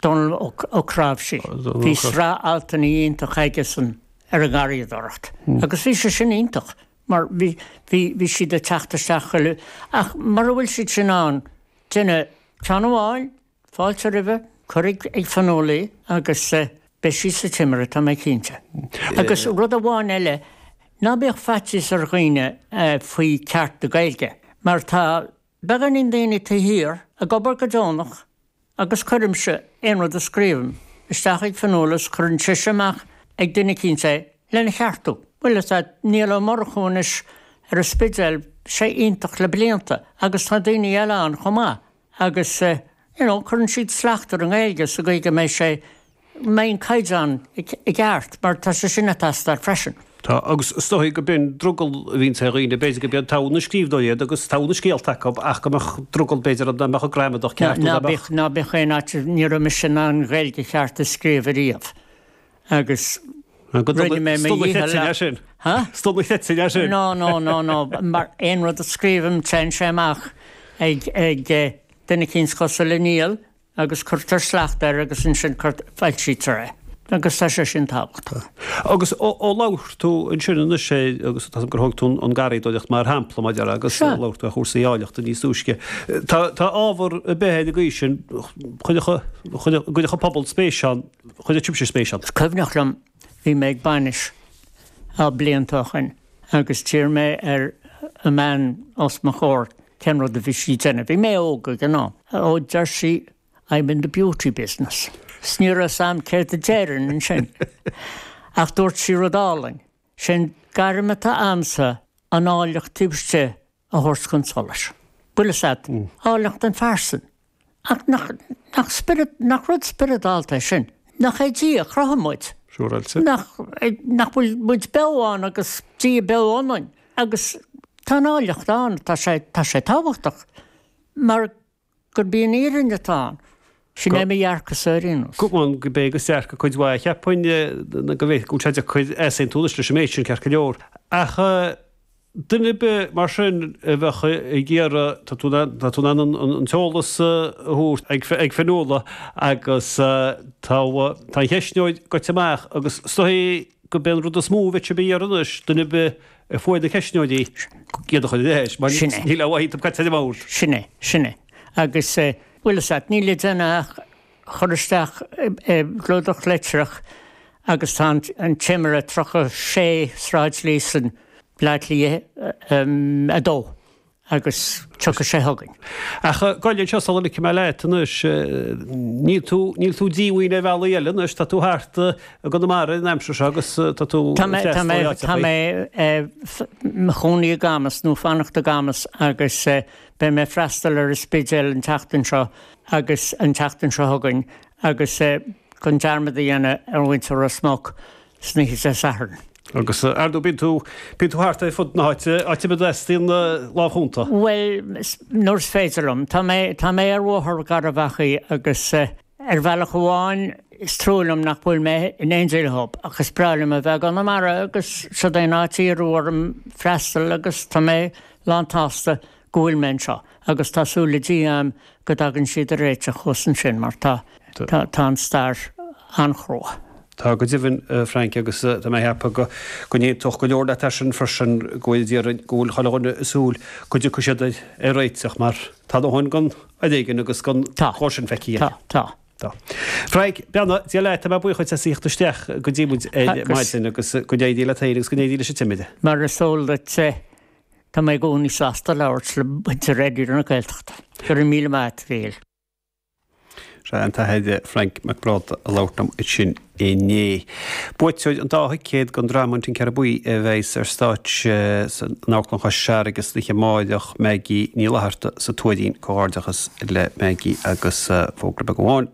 Dónall Ó Cnáimhsí, Bhí sraith altanna iontach aigesan ar an ngarraíodóireacht agus bhí sé sin iontach mar bhí siad ag teacht isteach chuile, ach mura bhfuil siad sin ann, déan ceann amháin, fáilte roimhe, cuir ag Fionnuala é agus beidh sí sa Timire, tá mé cinnte. Agus rud amháin eile, ná bíodh faitíos ar dhaoine faoi ceart na Gaeilge mar tá beagáinín daoine taobh thiar, ag obair go deonach agus cuirimse aon rud a scríobhaim isteach ag Fionnuala is cuireann sise amach ag duine eicínt é lena cheartú. Bhuel, is ea, Niall Ó Murchú anois ar an Spidéal, bhí sé iontach le blianta agus tá daoine eile ann chomh maith agus, you know, cuireann siad slacht ar an nGaeilge sa gcaoi go mbeidh sé, mbeidh an caighdeán i gceart mar tá sé sin ag teastáil freisin. Tá, agus is dóigh gurb in drogall a bhíonns ar dhaoine, b'fhéidir gurb in togha na scríbhneoirí iad agus togha na scéalta acu ach go mbeadh drogall b'fhéidir an mbeadh an gramadach ceart nó nach mbeadh. Ná bíodh aon fhaitíos, ní raibh mise in ann Gaeilge cheart a scríobh ariamh agus rinne mé mo dhícheall le. Há? Is dóigh nach bhfeictear é sin. No, no, no, no, mar aon rud a scríobhaim téann sé amach ag duine eicínt cosúil le Niall, agus cuirtear slacht air agus ansin foilsítear é agus tá sé sin tábhachtach. Agus ó labhair tú ansin anois é agus tá gur thóg tú an garraíodóireacht mar shampla, a Mhairéad, agus labhair tú ar chúrsaí áilleachta níos túisce, tá ábhar ar bith ina dhiaidh sin, chuirfeadh an pobal spéis ann, chuirfeadh sibhse spéis ann? Is cuimhneach liom Bhí mé ag bainis blianta ó shin agus d'fhiafraigh mé ar an mbean os mo chomhair cén rud a bhí sí ag déanamh, bhí mé óg ag an am. Ó, deir sí, I'm in the beauty business. 'S ní raibh 's a'm céard a déarfainn ansin ach dúirt sí rud álainn, Sé'n gairm atá a'msa an áilleacht taobh istigh a thabhairt chun solais. Bhuel sea, áilleacht an phearsan. Ach nach, nach spiorad, nach rud spioradálta é sin? Nach é Dia a chruthaigh muid? Siúráilte. Nach, nach bhfuil muid beo ann agus Dia beo ionainn? Agus tá an áilleacht ann, tá sé, tá sé tábhachtach mar. gurb í an fhírinne atá ann. Sin é mo dhearcadh-sa ar aon nós. Cheapfainn gurb é agus dearcadh cuid mhaith. Ní cheapfainn go bhfaighfeadh sé an-chuid easaontais leis an méid sin, ceart go leor, ach duine ar bith mar sin a bheadh ag iarraidh tá tú tá tú in ann an an t-eolas a thabhairt ag ag Fionnuala agus tá tá an ceistneoir goite amach agus is dóigh gurb é an rud is mó a bheifí a iarraidh anois, duine ar bith a fuair na ceistneoirí, iad a chur ina áit, mar níl aon mhaith dhom iad. Sin é, sin é. Agus, bhuel, is ait, níl le déanamh ach cur isteach i gclúdach litreach agus tá An Timire 36 Sráid Líosain, Bleá Cliath 2. Agus tiocfaidh sé chugainn. Ach gabh i leith, inis seo sula ligfidh mé leat anois. Níl tú, níl tú díomhaoin ar bhealaí eile anois, tá tú thart i gConamara an aimsir seo agus tá tú Tá mé, tá mé, tá mé i mo chónaí i gCamas, nó ag fanacht i gCamas agus beidh mé ag freastal ar an Spidéal an tseachtain seo agus an tseachtain seo chugainn agus gan dearmad a dhéanamh ar mhuintir Ros Muc. san oíche Dé Sathairn. Agus ar ndú, bíonn tú, bíonn tú thart ar fud na háite, áit ar bith a dteastaíonn lámh chúnta? Bhuel, nuair is féidir liom. Tá mé, tá mé ar Bhóthar Gharbh Achaidh agus ar bhealach amháin is trua liom nach bhfuil mé in Angel Hub ach is breá liom a bheith i gConamara agus siod é an áit ar iarradh orm freastal agus tá mé lántsásta go bhfuil mé anseo agus tá súil le Dia a'm go dtagann siad ar réiteach thuas ansin mar tá, tá, tá an stair an-chrua. Tá go deimhin, a Frank, agus tá mé a' ceapadh go, go n-aontódh go leor leat air sin freisin, go bhfuil déarfainn, go bhfuil chuile dhuine ag súil go dtiocfaidh siad ar, ar réiteach mar tá a ndóthain den fhoréigean agus den Tá. chóir sin feicthe Tá. againn. Tá. Tá. Frank, beannacht Dé leat, tá mé buíoch duit as a theacht isteach go dtí muid ar Agus. maidin agus go n-éirí le Timire agus go n-éirí leis an Timire. Mar is eol duitse, Tá mé i gcónaí sásta labhairt le muintir Raidió na Gaeltachta. Go raibh míle maith agat, a Mhichíl. Seo é an tAthair Frainc Mac Brádaigh a labhair liom ansin inné. Buaiteoir an dá thicéad don dráma An Tincéara Buí a bheas ar stáitse in Amharclann Chois Fharraige san oíche amáireach, Maggie Ní Fhlatharta sa Tuairín. Comhghairdeachas le Maggie agus fógra beag amháin.